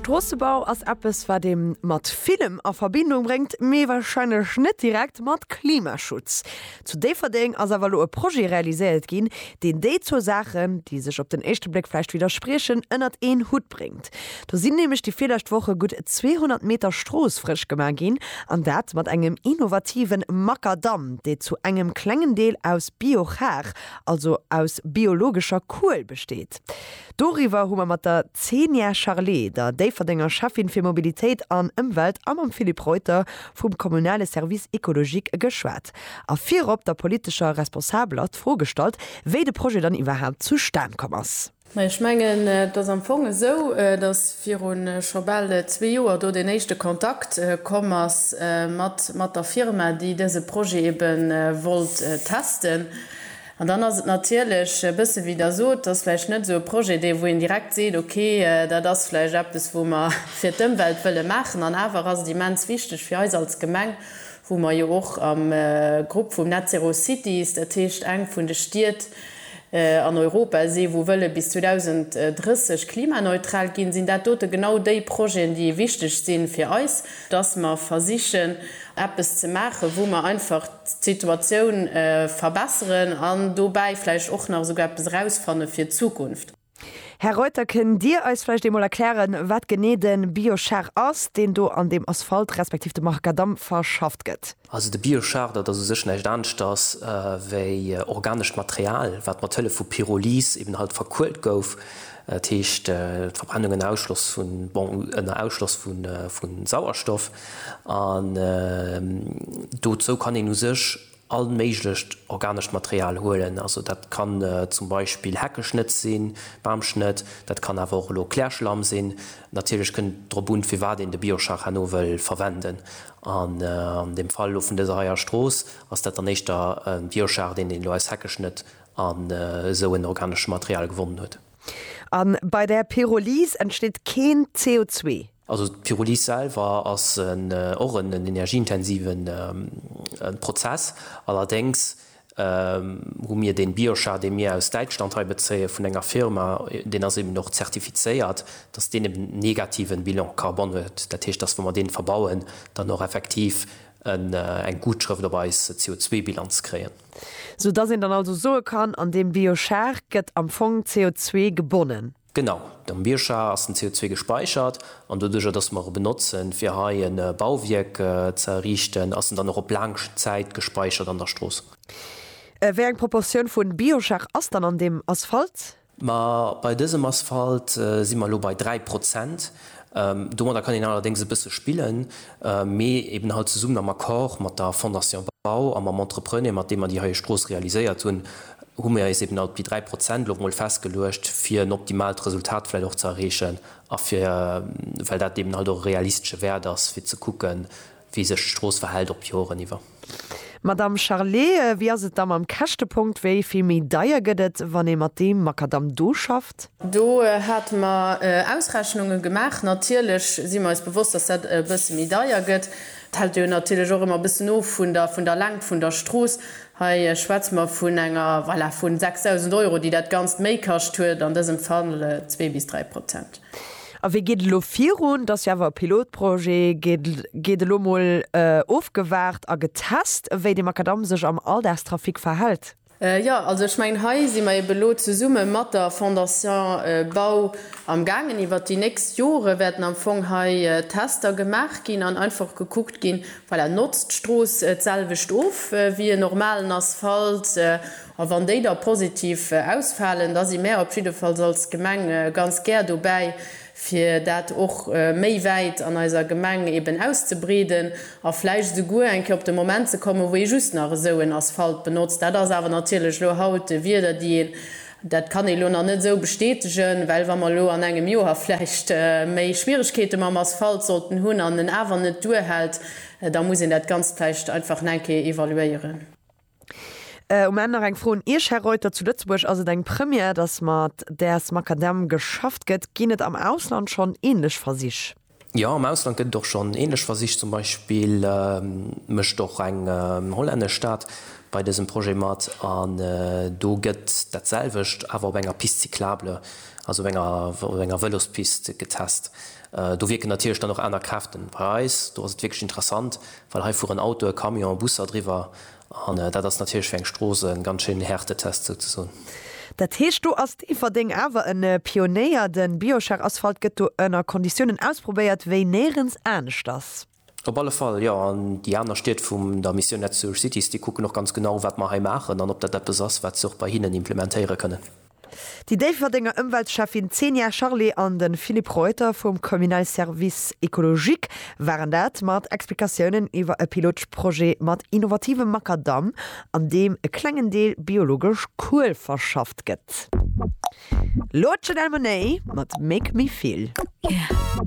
Stroossebau ass eppes wat ee mat villem a Verbindung bréngt, mee warscheinlech net direkt mat Klimaschutz. Zu Déifferdeng ass awer elo e Projet realiséiert ginn, deen déi zwou Saachen, déi sech op den éischte Bléck vläicht widderspriechen, ënnert een Hutt bréngt. Do sinn nämlech déi virlescht Woche gutt 200 Meter Strooss frësch gemaach ginn, an dat mat engem innovative Makadamm, dee zu engem klengen Deel aus Biochar, also aus biologescher Kuel besteet. Doriwwer hu mer mat der Zenia Charlé, der Déifferdenger Schäffin fir Mobilitéit an Ëmwelt a mam Philippe Reuter vum kommunale Service écologique geschwat a virop der politescher Responsabeler d'Fro gestallt, wéi de Projet dann iwwerhaapt zustan komm ass. Mä ech mengen, et ass am Fong esou, datt viru scho bal zwee Joer do deen éischte Kontakt komm ass mat der Firma, déi dëse Projet ebe wollt testen. An dann ass et natierlech e bësse wéi Der sot, et ass vläicht net esou e Projet, dee wou een direkt seet, okay, dat ass vläicht eppes wou mer fir d'Ëmwelt wëlle maachen. An awer ass et immens wichteg fir eis als Gemeng, wou mer jo och am Grupp vum Net Zero Cities, dat heescht eng vun de Stied an Europa si wou wëlle bis 2030 klimaneutral ginn, sinn dat dote genau déi Projeten, déi wichteg si fir eis, dass mer versichen eppes ze maachen, wou mer einfach d'Situatioun verbesseren an dobäi vläicht och nach esouguer eppes erausfanne fir d'Zukunft. Här Reuter, kënnt Dir eis vläicht eemol erklären, wat genee de Biochar ass, deen do an deem Asphalt respektiv dem Macadam verschafft gëtt? Also de Biochar, dat ass u sech näischt aneschters wéi organescht Material, wat mat Hëllef vu Pyrolyse eben halt verkuelt gouf, dat heescht d'Verbrennung ënner Ausschloss vun, bon, ënner Ausschloss vu Sauerstoff. An dozou kann een u sech all méiglecht organescht Material huelen. Also dat kann zum Beispill Heckeschnëtt sinn, Bamschnëtt, dat kann awer och elo Klärschlamm sinn. Natierlech kënnt et drop un, firwat een de Biochar herno wëll verwenden. An dem Fall elo vun dëser heier Strooss ass dat dann éischter e Biochar, deen een elo aus Heckeschnëtt an esou en organeschem Material gewonnen huet. A bei der Pyrolyse entsteet keen CO2. Also d'Pyrolyse selwer ass och en energieintensive Prozess. Allerdéngs hu mir dee Biochar, dee mir aus Däitschland hei bezéie vun enger Firma, deen ass eben och zertifizéiert, dass deen eben en negative Bilan carbone huet. Dat heescht, dass wa mer dee verbauen, dann och effektiv eng Gutschrëft op eis CO2-Bilanz kréien. Soudass een dann also soe kann, an deem Biochar gëtt am Fong CO2 gebonnen. Genau, am Bioscha ass den CO2 gespäichert an doduerjer dass mer e benotzen fir hei e Bauwierk ze erriichten, ass en dann och op laang Zäit gespäichert an der Strooss. Wéi eng Proportioun vu Bioschach ass dann an deem Asphalt? Ma bei dësem Asphalt si mer elo bei 3 Prozent. Domadder kann een allerdéngs e bësse spillen, mee eben halt zesummen am Accord mat der Fondation Bau a mam Entrepreneur mat deem mer déi heie Strooss realiséiert hunn, hu mir eis eben op déi 3 Prozent elo mol festgeluecht, fir en optimaalt Resultat vläicht och ze erreechen a fir, well dat eben halt och e realistesche Wäert ass, fir ze kucken, wéi sech d'Strooss verhält op Joren iwwer. Madamm Charlé, wéi ass et da mam Käschtepunkt? Wéi vill méi deier gëtt et, wann ee mat deem Makadamm do schafft? Do hate mer Ausrechnunge gemaach. Natierlech si mer eis bewosst, dass dat e bësse méi deier gëtt. Et hält jo natierlech och ëmmer e bëssen of vun der Längt vun der Strooss. Hei schwätze mer vun enger Valeur vu 6.000 Euro, déi dat Ganzt méi kascht huet, an dësem Fall zwee bis dräi Prozent. A wéi geet et elo virun? Et ass jo awer e Pilotprojet. Gétt elo emol ofgewaart a getest, wéi de Makadamm sech am Alldagstrafic verhält? Jo, also ech mengen, hei si mer eeben elo zesumme mat der Fondation Bau amgaangen. Iwwert déi nächst Jore wäerten am Fong hei Tester gemaach ginn an einfach gekuckt ginn, Voilà, notzt d'Strooss d'selwecht of wéi en normalen Asphalt, a wann déi da positiv ausfalen, da si mär op jiddefalls als Gemeng ganz gär dobäi, fir dat och méi wäit an eiser Gemeng eben auszebreeden a vläicht esouguer eng Kéier op de Moment ze kommen, wou ee just nach esou en Asphalt benotzt. Dat ass awer natierlech elo haut Wierder, déi een Dat kann ee lo nach net esou bestätegen, well wa mer elo an engem Joer vläicht méi Schwieregkeete mam Asphalt sollten hunn an en awer net duerhält, da muss een dat Ganzt vläicht einfach nach eng Kéier evaluéieren. Um Enn nach eng Fro un Iech, Här Reuter. Zu Lëtzebuerg ass et eng Première, dass mat Däers Makadamm geschafft gëtt. Ginn et am Ausland schonn änlech Versich? Jo, am Ausland gëtt et och schonn ähnlech Versich. Zum Beispill mécht och eng hollännesch Stad bei dësem Projet mat an do gëtt dat selwecht, awer op enger Piste cyclable, also op enger op enger Vëlospiste getest. Do wierken natierlech dann och aner Kräften. Bei eis do ass et wierklech interessant, well hei fueren Autoe, Camion, Busser driwwer. An dat ass natierlech fir eng Strooss e ganz schéinen Härtetest souzesoen. Dat heescht, do ass Déifferdeng awer e Pionéier. De Biochar Asphalt gëtt do ënner Konditiounen ausprobéiert, wéi néirens aneschters. Op alle Fall, jo. An déi aner Stied vum der Mission Net Sewer Cities, déi kucken och ganz genau, wat mer hei maachen an ob dat eppes ass, wat se och bei hinnen implementéiere kënnen. Déi Déifferdenger Ëmweltschäffin Zenia Charlé an de Philippe Reuter vum Communal Service Ecologique waren dat, mat Explikatiounen iwwer e Pilotprojet mat innovativem Makadamm, an deem e klengen Deel biologesch Kuel verschafft gëtt. Elo Janelle Monáe mat Make me feel.